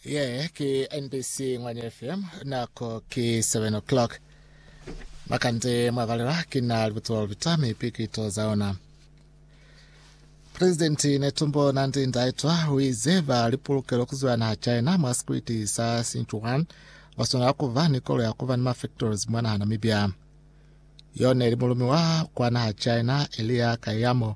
Ye ke NBC Ngwanya FM, nako ke 7 o'clock. Makande mwabalelwa ke na libutulo lipita mi pikito za ona. Presidenti Netumbo Nandi Ndaitwa uize ba lipulukelo kuzwela naha China mwa sikwiti sa Sichuan baswanela kuba ni kolo ya kuba ni mafactories mwa naha Namibia. Yone li mulumi wa kwa naha China Elia Kayamo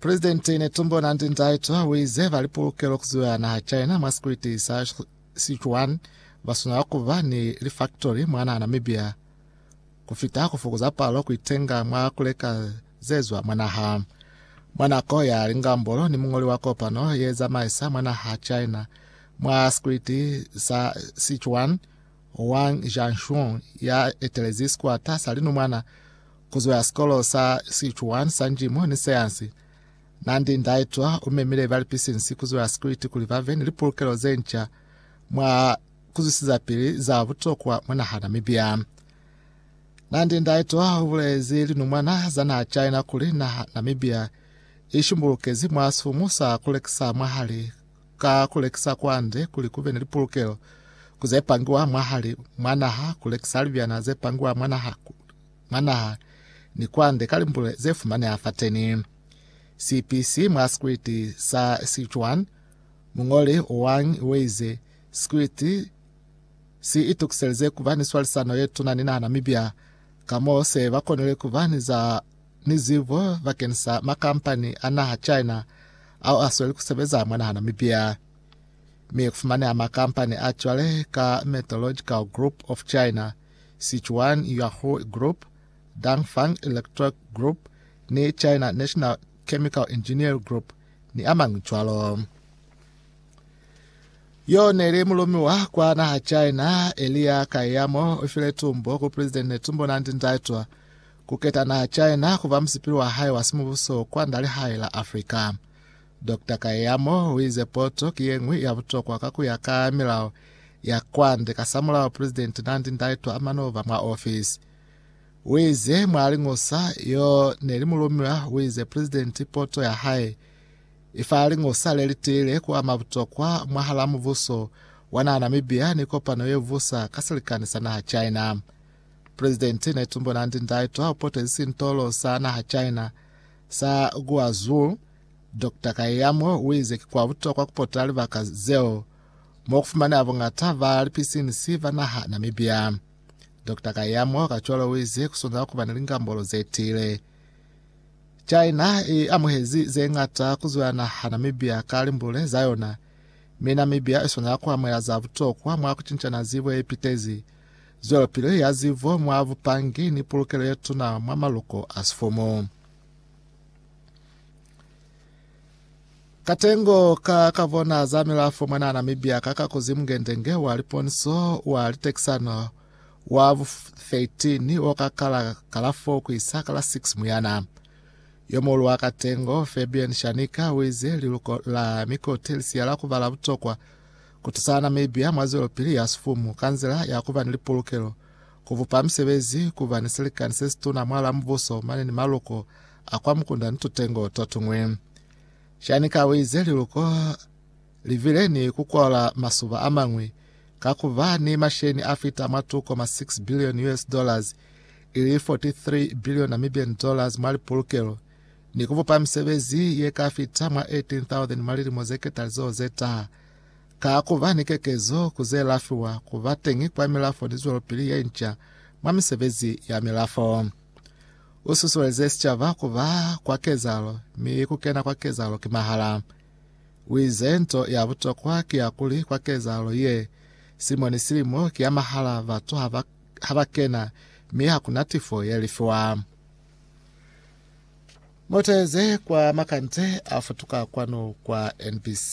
Presidente Netumbo Nandi-Ndaitwah uize bali pulukelo kuziwa naha China mwa sikwiti sa Sichuan baswanela kuba ni lifaktori mwana Namibia kufita kufukuza palo kuitenga mwa kuleka zezwa mwa naha. Mwa nako ya lingambolo ni mungoli wa kopano ye zamaisa mwa naha China mwa sikwiti sa Sichuan, Wang Jianxun ya etelezi sikwata sa linumwana Kuzo ya sikolo sa Sichuan sa Njimu ni Seansi. Nandi Ndaitwa umemile balipisinsi kuzo ya sikuliti kuli bave ni lipulukelo zenca mwa kuzwisizapili za butokwa mwa naha Namibia. Nandi Ndaitwa ubulezi linumwana za naha China kuli naha Namibia ishimbulukezi mwa sifumu sa kulekisa mwahali ka kulekisa kwande kuli kube ni lipulukelo kuzepangiwa mwahali mwa naha kulekisa libyana zepangiwa mwa naha mwa naha ni kwande ka limbule ze fumaneha fateni. CPC mwa sikriti sa Sichuan, muñoli Wang uize, Sikriti si itukiselize kuba ni swalisano ye tuna ni naha Namibia, ka mo se ba konile kuba ni za ni zibo bakeni sa makampani a naha China ao a sweli kusebeza mwa naha Namibia. Mi kufumaneha makampani a cwale ka Metallurgical Group of China, Sichuan Yahui Group, Dangfang Electric Group ni China National Chemical Engineer Group ni amañwi cwalo. Yo neli mulumiwa kwa naha China, Elia Kayamo ifile tumbo ku President Netumbo Nandi Ndaitwa kuketa naha China kuba musipili wa hae wa simubuso kwa nda lihae la Africa. Dokta Kayamo u ize poto ki ye ñwi ya butokwa ka ku ya ka milao ya kwande kasamulaho Pulezidenti Nandi Ndaitwah a mano ba mwa ofisi. U ize mwa liñusa yo ne li mulumiwa u ize pulezidenti poto ya hae i fa liñusa le li tiile ku ama butokwa mwahal'a mubuso wa naha Namibia ni kopano ye busa ka silikani sa naha China. Pulezidenti Netumbo Nandi-Ndaitwah u potezi sintolo sa naha China sa Guazhou Dokta Kayamo uize ki kwa butokwa kupota libaka zeo mo kufumaneha bongata ba lipisinisi ba naha Namibia. Dokta Kayamo kacwalo uize kusuna kuba ni lingambolo zetiile. China i amuhezi zeñata kuzwa naha Namibia ka limbule zayona, mi Namibia isuna kuamuhela za butokwa mwa kucincana zibo yepitezi, zwelopili ya zibo mwa bupangi ni pulukelo yetuna mwa maluko a sifumu. Katengo ka ka bona za milafo mwana Namibia ka ka kuzimu ngendenge wa liponso wa litekisano wa 13 wo ka kala kalafo ku isa kala 6 muyana. Yomolu wa Katengo, Fabian Shanika, wize liluko la mikote lisiya la kubala butokwa kutusa Namibia mwa zwelopili ya sifumu kanzila ya kuba ni lipulukelo Ku bupa misebezi, ku ba ni silikani se situna mwal'a mubuso mane ni maluko a kwa mukunda ni tutengo to tuñwi. Shanika u ize liluko li bile ni ku kola masuba a mañwi ka ku ba ni masheni a fita mwa 2.6 billion US dollars, ili 43 billion Namibian dollars mwa lipulukelo, ni ku bupa misebezi ye ka fita mwa 18,000 mwa lilimo ze ketalizoho ze taha. Ka ku ba ni kekezo ku ze lafiwa ku ba teñi kwa milafo ni zwelopili ye nca mwa misebezi ya milafo, u susuelize sicaba ku ba kwa kezahalo mi ku kena kwa kezahalo ki mahala. U ize, Nto ya butokwa ki ya kuli kwa kezahalo ye, silimo ni silimo ki ya mahala, batu ha ba ha ba kena mi ha ku na tifo ye lifiwa. Muteze kwa makande a futuka kwanu kwa NBC.